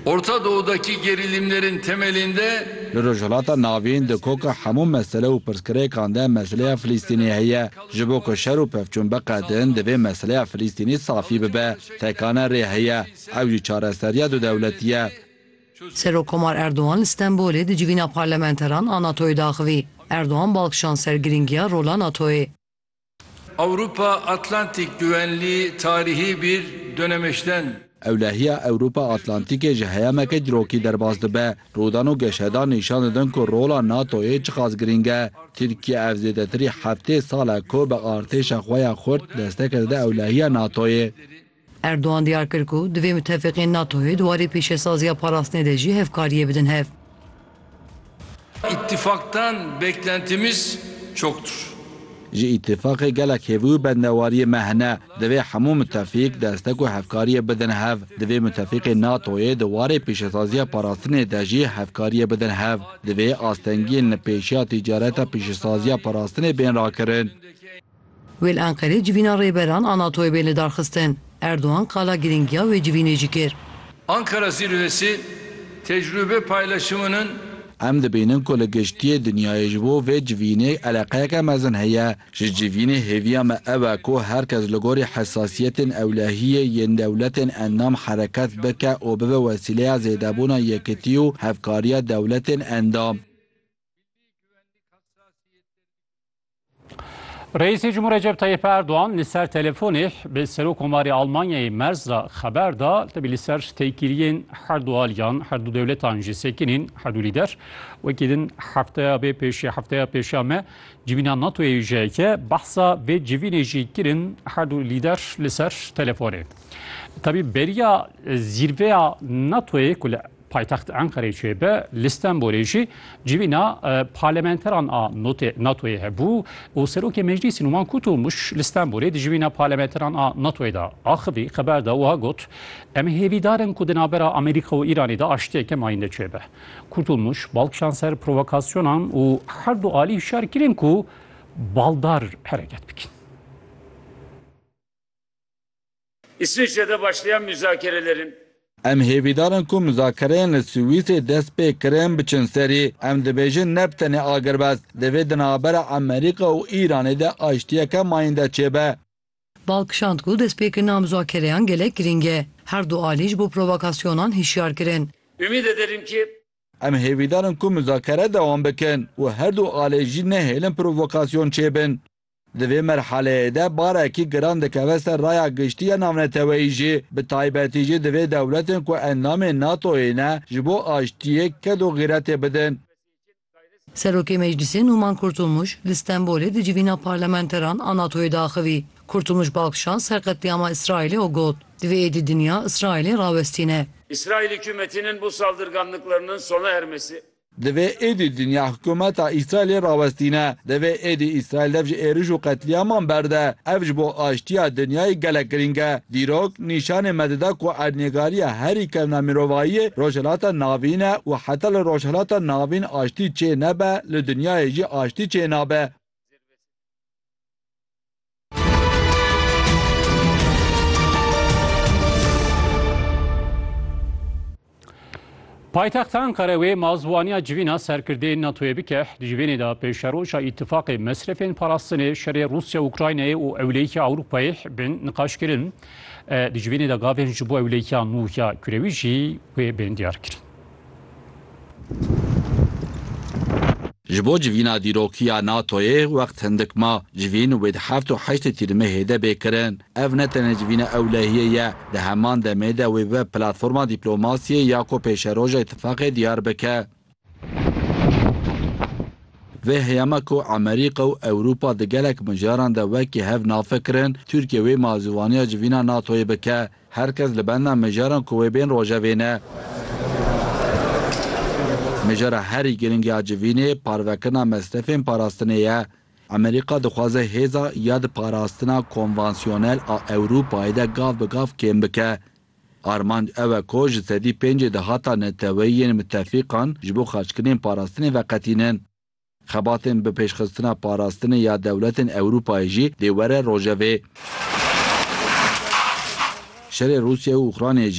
Orta Doğu'daki gerilimlerin temelinde. Li Rojhilata Navîn di koka hemû mesele û pirsgirêkan de meseleya Filîstînê heye. Ji bo ku şer û pevçûn biqedin, divê meseleya Filîstînê safî bibe. Tekane rê heye. Ew jî çareseriya dudewletî ye. Serokkomar Erdogan li Stenbolê di civîna parlamenteran a NATO'yê de axivî. Erdogan bal kişand ser girîngiya rola NATO'yê. Ewropa Atlantik güvenli tarihi bir dönemeçten. Ewlehiya Ewropa Atlantikê ji heyameke dirokî derbas dibe. Rûdan û geşedan nîşan didin ku rola NATO'yê çiqas girîng e. Tirkiye ev zêdetirî heftê sal e ku bi artêşa xwe ya xurt desteke dide ewlehiya NATO'yê. Erdogan diyar kir ku divê mutefîqên NATO'yê di warê pêşesaziya parastinê de jî hevkariyê bidin hev. Îtîfaqdan beklentimiz çoktur. Ji îtîfaqê gelek hêvî û bendewariyê me hene. Divê hemû mutefîq destek û hevkariyê bidin hev. Divê mutefîqên NATO'yê di warê pêşesaziya parastinê de jî hevkariyê bidin hev. Divê astengiyên li pêşiya tîcareta pêşesaziya parastinê bên rakirin. Wê li Enqerê civîna rêberan a NATO'yê bên lidarxistin. Erdogan qala girîngiya wê civînê jî kir. Ankara Zirvesi tecrube paylaşımının. Em dibînin ku li giştiyê dinyayê ji bo vê civînê eleqeyeke mezin heye. Ji civînê hêviya me ew e ku her kes li gorî hesasiyetên ewlehiyê yên dewletên endam hereket bike û bibe wesîleya zêdebûna yekitî û hevkariya dewletên endam. Reîsê Cumhur Recep Tayyip Erdoğan li ser telefonê bi Serok Komarê Almanyayê Merz re xeber da tebî li ser têkiliyên her du aliyan her du dewletan jî sekinîn her du lîder wekî din hefteya bê pêşê hefteya pêşa me civîna NATOyê jiyeke behsa vê civînê jî kirin her du lîder li ser telefonê tebî beriya zîrveya NATOyê ku li Paytext Enqereyê çêbe li Stenbolê jî civîna parlementeran a NATO'yê hebû û Serokê Meclîsî Numan Kutomuş li Stenbolê di civîna parlementeran a NATO'yê de axivî xeber de wiha got, Em hêvîdar in ku di navbera Amerîka û Îranê de aştiyeke mayinde çêbe. Kurtulmuş bal kişand ser provokasyonan û her du alî hişyar kirin ku baldar hereket bikin. Îsviçrede başlayan muzakirelerin. Em hêvîdar in ku muzakereyên li Swîsê dest pê kirin biçin serî. Em dibêjin ne bi tenê agirbest, divê di navbera Amerîka û Îranê de aştiyeke mayînde çêbe. Bal kişand ku destpêkirina muzakereyan gelek girîng e. Her du alî ji bo provokasyonan hişyar kirin. Umîd ederim ki. Em hêvîdar in ku muzakere dewam bikin û her du alî jî nehêlin provokasyon çêbin. Di vê merhaleyê de barekî giran dikeve ser raya giştî ya navneteweyî jî, bi taybetî jî divê dewletên ku endamên NATO'yê ne ji bo aştiyê ked û xîretê bidin. Serokê Meclîsê Nûman Kurtulmuş li Stenbolê di civîna parlamenteran a NATO'yê de axivî. Kurtulmuş bi axşan ser qetlîama Îsraîlê û got, Divê êdî dinya Îsraîlê rawestîne. Îsraîlî hikûmetînin bu saldırganlıklarının sona ermesi, Divê êdî dinya hikûmeta Îsraîlê rawestîne. Divê êdî Îsraîl dev ji êrîş û qetlîaman berde. Ev ji bo aştîya dinyayê gelek girîng e. Dîrok nîşanê me dide ku erdnêgarîya herî kevna mirovahîyê Rojhilata Navîn e û heta li Rojhilata Navîn aştî çê nebe li dinyayê jî aştî çê nabe. Paytexta Ankara wê mazwaniya civîna serkirdê NATOyê bike di civênê de pêşeroja îtîfaqê mesrefên parastinê şerê Rusya Ukraynayê û ewleyîkê Ewropayê bin niqaşkirin. Di civênê de gavên ji bo ewleyîkiya nû ya kurewî jî wê bên diyarkirin. Ji bo civîna dîrokiya NATO'yê wext hindik ma, civîn wê di heft û heştê Tîrmehê de bê kirin. Ev ne tenê civîna ewlehiyê ye, di heman demê de wê bibe platforma dîplomasiyê ya ku pêşeroja îtifaqê diyar bike. Vê heyama ku Amerîka û Ewropa di gelek mijaran de wekî hev navfekir in, Tirkiye wê malzûvaniya civîna NATO'yê bike. Her kes li benda mijaran ku wê bên rojevê ne. Mijara herî girîng ya civînê parvekirina mesrefên parastinê ye. Amerîka dixwaze hêza ya di parastina konvansyonel a Ewropayê de gav bi gav kêm bike. Armanc ew e ku ji sedî pêncê dahata neteweyiyên mitefîqan ji bo xerckirinên parastinê veqetînin. Xebatên bi pêşxistina parastinê ya dewletên Ewrûpayê jî dê were rojevê. Şerê Rûsyayê û Ukraynayê jî